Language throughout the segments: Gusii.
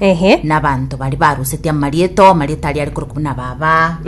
Ehe. nabanto baria barusetie amarieto amarieto aria ari korokwa buna baba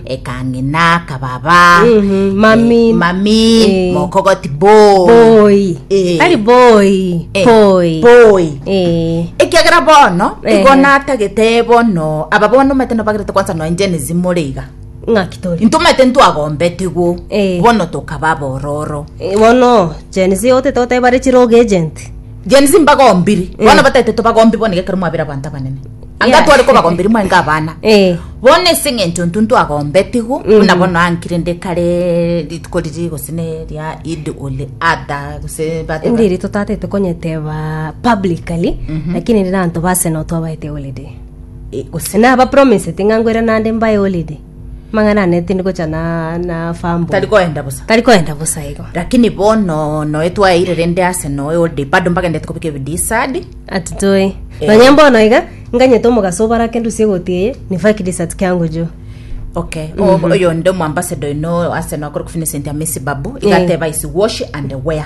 ekang'ina kababa Mhm, mami. eh, mami Eh. mokogoti boy Boy. Eh. Ari boy. Eh, Boy. boy Eh. ekiagera bono Eh. igo natagete bono aba bono omete nobagerete kwansa noe njenesi more iga Ng'aki tori. intwe omete ntwagombetigwo Eh. bono tokaba bororo Eh, Bono Gen Z otete oteba re chiroga agent. Gen Z mbagombiri eh. bono batete tobagombi bono gekero mwabera abanto abanene anga tware kobagombiri mwaenge abana eh. bono ase eng'encho ntu ntwagombetigwo mm. buna bono ankire nde kare rituko riri gose ne ria id ole ada gose ndiri totatete konyeteba publicly mhm. lakini rira anto base no twabaete holiday eh, gose na aba promise ting'angwera nande mbae holiday Mang'ana ane tindi gocha na na fambo. Tari koenda bosa. Tari koenda bosa igo. Lakini bono noe twaeire rende ase noe ode bado mbagendete kobika ebidisadi. Ati toi. Eh. Nonya mbono iga nganyete omogaso obarake ndusie goti eye ni fake desert kiango jo. Okay. O- Oyo nde omoambassador ino ase noe akore kufinisenti amesibabu. Iga Eh. ateba is wash and wear.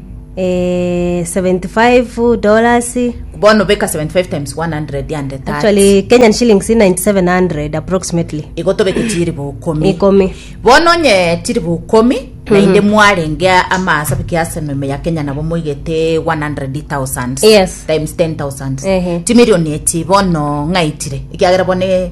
eh, 75 dollars bono beka 75 times 100 ande tax. actually kenyan shillings 9700 approximately igo tobeke chiribu ukomi Ikomi. bono onye chiribu ukomi naende mwarenge amasa biki ase meme ya kenya nabo moigete 100000 Yes. times 10000 Ehe. chimilioni echi bono ng'aitire ekiagera bono e-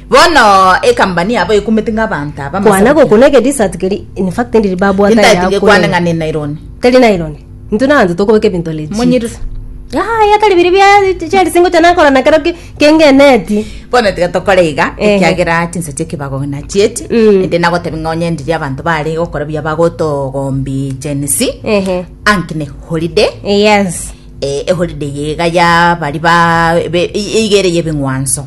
Bono ekambani yabo ekumete ng'a abanto aba Kwana amasabukia. gokuna eke dessert keri in fact ndiri babwata Nintaeti ya ngekwane ng'a kure. ne nylon. Teri nylon. Intwe naanze tokobeka ebinto legit. Monyirisa. Ah, ya tari biri bia cheri singo chana kora na kero ki kengeneti. Bono tiga tokore iga Ehe. ekiagera chinsa chi'ekebago nachieti Mm. ende nagotebia ng'a onye ndiri abanto bare gokora buya bagotogombia Gen Z Ehe. ang'ne holiday Yes. Eh, eholiday iga yabari ba be- i- iga ere yebeng'wanso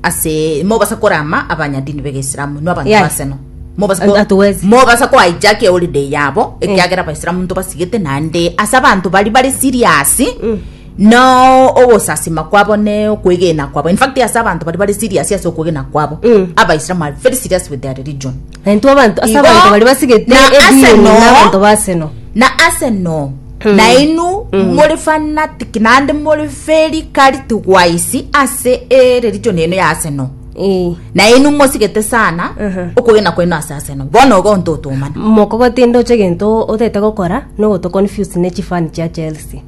ase mobasa korama abanyadini begeisilamu inwe abanto Yeah. baseno mobasa And ko- that was- mobasa ko hijack eholiday yabo ekiagera abaisilamu ntobasigete naende ase abanto bari bari serious Mm. no ogosasima kwabo ne okwegena kwabo in fact ase abanto bari bari serious ase okwegena kwabo Mm. abaisilamu are very serious with their religion Na intwe abanto ase Igo, abanto baria basigete na ase Edeni no- na abanto ba Aseno. na ase no nainu muri fanatiki naende muri feri kari tugwaisi ase ere richoni eno ya ase no Eh. nainu mosigete sana Mhm. okogena kwaino ase ase no bono igo ntotomana Mokogotinde oche gento otete gokora no goto confuse ne chifani chia Chelsea.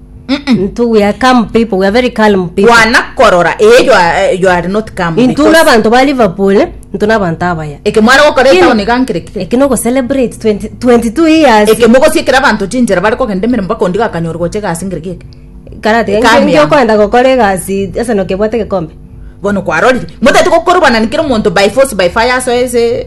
Into we are calm people, we are very calm people. kwana korora ee you are, you are not come Into because n'abanto ba Liverpool, into n'abanto abaya. eke mware gokora Kino- etaoni gankerekire Eki no celebrate 20 22 years. eke mogosiekera abanto chinchera bare kogenda emeremo bakondi gakanyora gocha egasi ngereki eke Karate, Eka ngi- ngi miaka. okoenda gokora egasi ase nokebwate gekombe. bono kwarorire motete gokorobana na kera omonto by force by fire asoe ase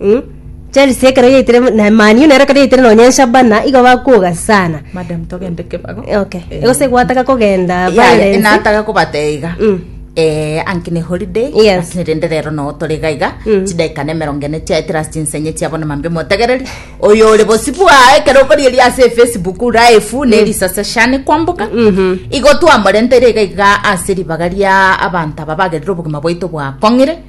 Mm. Chelsea ekero yaitire na Man U nero ekero yaitire nonya nshabana igo bakoga sana madam togende kebago okay Eh, egose gwataka kogenda ya- ya, violence. nataga kobateiga Mm. eh, anki ne holiday Yes. lakini rende rero noo tore gaiga Mm. chidakika ne emerongo ene chiaetera ase chinsenye chiabo na mambia omotegereri oyo ore bosio bwaye ekero okorieria ase efacebook raifu ne erisase shani kwamboka Mhm. igo twamorenteire iga iga ase ribaga ria abanto aba bagerire obogima bwaito bwakong'ire